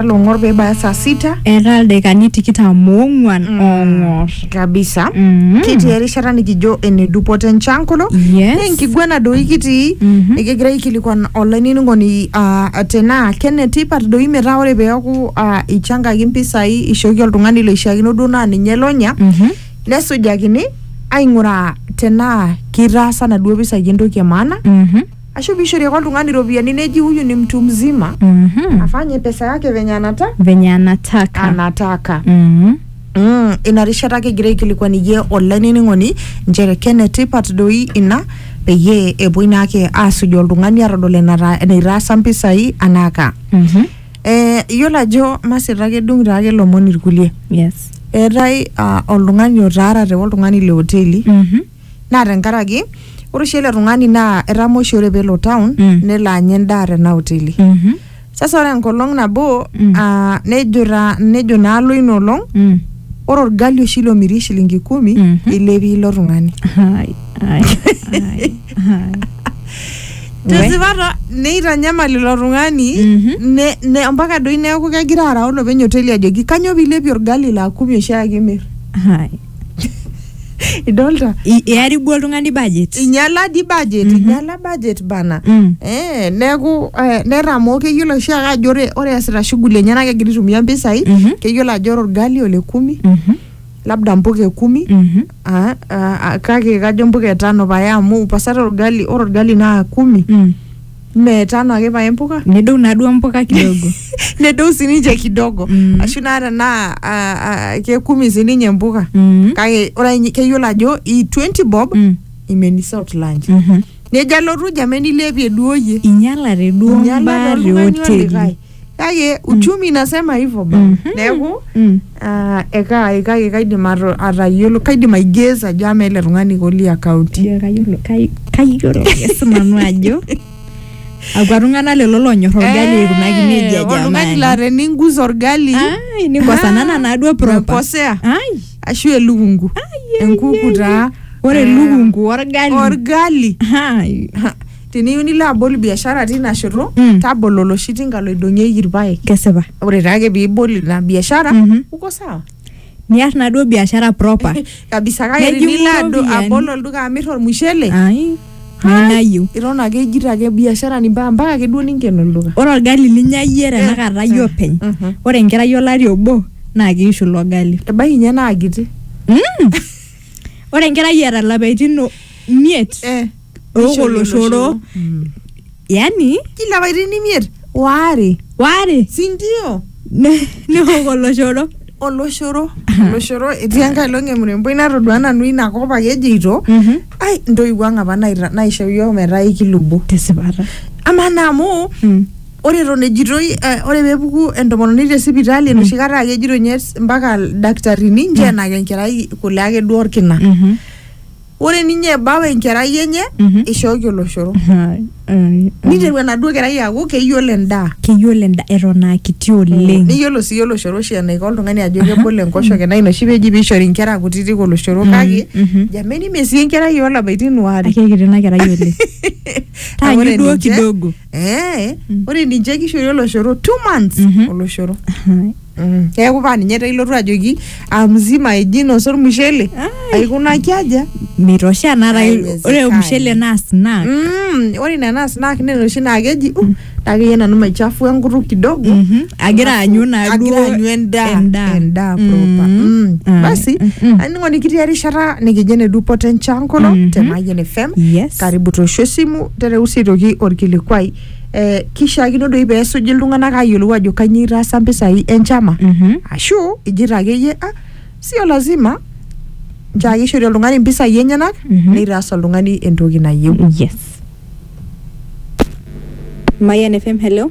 long'or peibaya saa sita eeta ildaikani tikitam oong'uan Mm. oong'or kabisa Mm. kitii erishata nikijo ene dupoto enchankolo Yes. na enkiguana doi kitii Mhm. nikigira aikilikuan olainining'oni uh, tenaa kenetipat doi metaa ore peeku uh, ichankaki mpisai ishooki oltung'ani loishiakino duo naa ninye lonya Mhm. nesujakini aing'uraa tenaa kitaasa naduo pisai entoki e maana Mhm. Ashu piishori ake oltung'ani iropiyiani neji huyu ni mtu mzima Mhm. afanye pesa yake venye anata venye anataka anataka Mhm. Mm, ina rishata kigira aikilikuaniyie olainining'oni nchere kenetipat doi ina peyie epuoi naake aasuj oltung'ani atodol enata- enaitaasa mpisai anaaka Mhm. Eh, iyiolo ajo masita ake edung taake lomon irkulie yes eetae ah, oltung'ani otaarate oltung'ani le hoteli Mhm. naa tenkaraki ore oshi ele tung'ani naa etama oshi ore pelo town Mm. nelo anya endaa tena hoteli Mhm. sasa ore enkolong nabo Mm. ah, nejo ta- nejo naalo ina olong Mm. ore orgali oshi lomiri shilingi kumi Mhm. ilepie ilo tung'ani Hai, hai, hai, hai. We. tesipata neitanyamal ilo tung'ani Mhm. ne- ne- mpaka doi neeku kegira arau olopeny hoteli ajoki kanyoo piilepie orgali laa kumi oshiake imir Hai. idolta I- earibu oltung'ani budget inyala di budget inyala budget bana Mm. eh, neeku eh, nera amu keyiolo oshi ake ajo ore ore easita shughuli enye naa kegira aitumia mpisai Mhm. keyiolo ajo ore orgali ole kumi Mhm, labda mpuka e kumi mhm. ah, ah, ah, kake kajo mpuka etano paye amu pasata orgali ore orgali naa kumi Mm. Mme tano ake pae mpuka nedou naaduo mpuka kidogo nedou sininche kidogo Mm. ashu naa tenaa ah, ah, kekumi sininye mpuka Mm. kake ore ninye keyiolo ajo i 20 bob Mm. imenisa out lunch Mhm. nejo alotu jameni ilepie duo yie inyalate duo Inyalate mbaa te oltung'ani hoteli olikae. kake uchumi inasema hivyo ba Mhm. neeku Mm. ah, eka kake kaidim ato- atayiolo kaidim aigeza ajo ama ele tung'ani koli akaunti Ijo kayiolo kai- kayiolo ake sinanu ajo akwa tung'anak lelo lonyor orgali aikunaki nejia oltung'ani laa jamani teningusa orgali Ai, nikosanana naaduo proper mekosea ai ashu elukungu ai, ai, enkuku ai. taa ore Ah, elukungu orgali orgali Ai. Teniyieu nilo abol biashara tina shoto Mm. tabolo oloshi tinka loidong'ieki irpaek kesipa ore taake piibol ina biashara Mhm. uko sawa niar naduo biashara proper kabisa kake Nejing'u tinilo ado- iropiyiani. abol olduka amir ormushele ai nainayieu iton ake ijito ake biashara ni mpaka mpaka ake duo ninken olduka ore orgali linya iyie tenakata iyie openy Mhm. ore enkerai olari obo naa kiishu ilo gali ebaiki ninye naa kiti Mm. ore enkerai eeta ilapaitin o- imiet Eh. Neishori oloshoro Mm. yani kila parin imiet waare waare sindio ne- neok oloshoro oloshoro oloshoro etii enkae long emuremboi natodua nanu inakop ake ejeito Mhm. ai ntoiwuo ang apa naita- naisho yiok metaa ikilubo tesipata amaa naa amu Mm. ore eton ejitoi eh, ore peepuku entomononi te sipitali enoshi kata ake ejito nye s- mpaka ildakitarini ncheenaki enkerai kule ake duo orkina Mhm. ore ninye ebau enkerai enye Mhm. ishooki oloshoro Hai, ai, ai. niteru enaduo kerai aaku keyiolo endaa keyiolo enda eton aa kiti oleng niyiolo sii oloshoro oshi enaiko oltung'ani ajo kebol enkoshoke naa ina oshi peji piishori inkera kutitik oloshoro Mhm, kake mhm. jameni mee sii enkerai olapaitin waare akekiti ina kerai oleng Amu ore taanyu duo ninche- kidogo Eh, ore ninche kishori oloshoro two months Mhm. oloshoro Mm, keeku paa ninye taa ilotu ajoki amzima eji inosa ormushele aikunaki aja mitosha Ai, naata wezekani. ore ormushele naa snack Mm, ore ina naa snack nena oshi naa keji uh, taakeyie nanu maichafua enkutuk kidogo Mhm. agira aanyu naa agira duo aanyu endaa endaa. endaa proper Mm. Ah. basi aningo nikitii erishata nikijo ene dupoto enchan kulo te Mayian FM Yes. karibu toosho esimu tereu sii aitoki orkilikuai eh, kishaakino doi pee esuj iltung'anak aayiolou ajo kanyioo itaasa mpisai enchama Mhm. ashu ijito akeyie ah, sio lazima nchoo ake ishori oltung'ani mpisai enyenak Mhm. neitaas oltung'ani entoki nayieu yes Mayan FM, hello.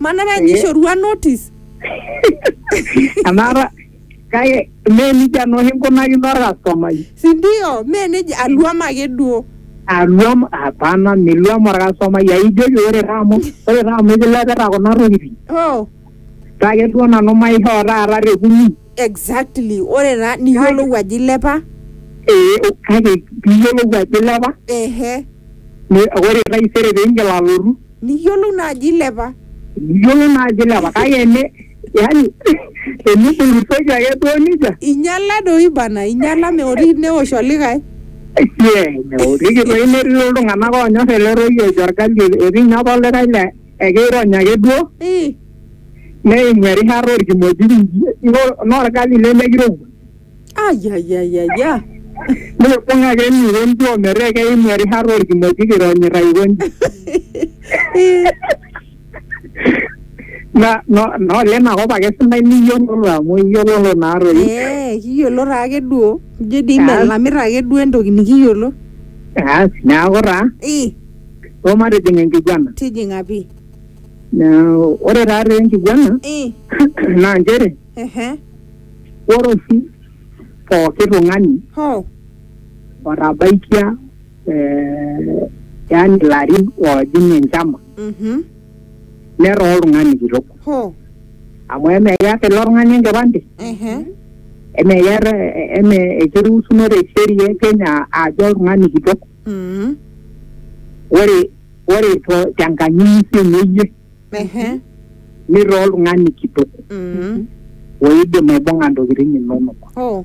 manara Eh. nishorua notice anaata kake mee nijia nooshi nkunakino orkastomai sindio mee neja aluam ake duo aluam hapana miluam orkastomai aijoki ore taa amu ore taa amu ikilepita kuna tokitin oh kake duo nanu maishoo taata te kumi exactly ore taa niyiolou ajo ilepa ee kake piiyiolou ajo ilepa ehe ni- ore taisere piingil alotu Niyiolou naa ajo ilepa. Niyiolou naa ajo ilepa kake ene yani tenibulusoki ake duo nija. Inyala doi bana inyala meoriki neosh olikae. Yee meoriki doi netii doi iltung'ana oonyor ele toki ojo orgali etii ninye apa olikae laa ekeirony ake duo neimu erishata orkimojik inji naa orgali lemekirowua. ayayayaya Ore pong ake eniro ntuo metaa keim erishata orkimojik ironyita aikonji. Na no- na ole ina kop ake sidai niyiololo amu iyiololo naa toi. ee kiyiolo taake duo ijo dii Kaas. melamita ake duo entoki nikiyiolo Aas, neeku taa Ih, o matijing enkiguana. tijing'a pii Neeku ore taa tee enkiguana Ih, naa nchere Ehe. Ore oshi pooki tung'ani Ho. otabaikia eh, yaani ilarin oojing enchama Mhm. netaa oltung'ani kitok Ho. amu eme keeta ilo tung'ani enkipande Ehe. eme keeta eme ekiruusuno te sheria e Kenya ajo oltung'ani kitok Mhm. ore ore to- tenkanyunyusie ino iyie Ehe. nirraa oltung'ani kitok Mhm. oidim aibung'a ntokitin inonok. Oh.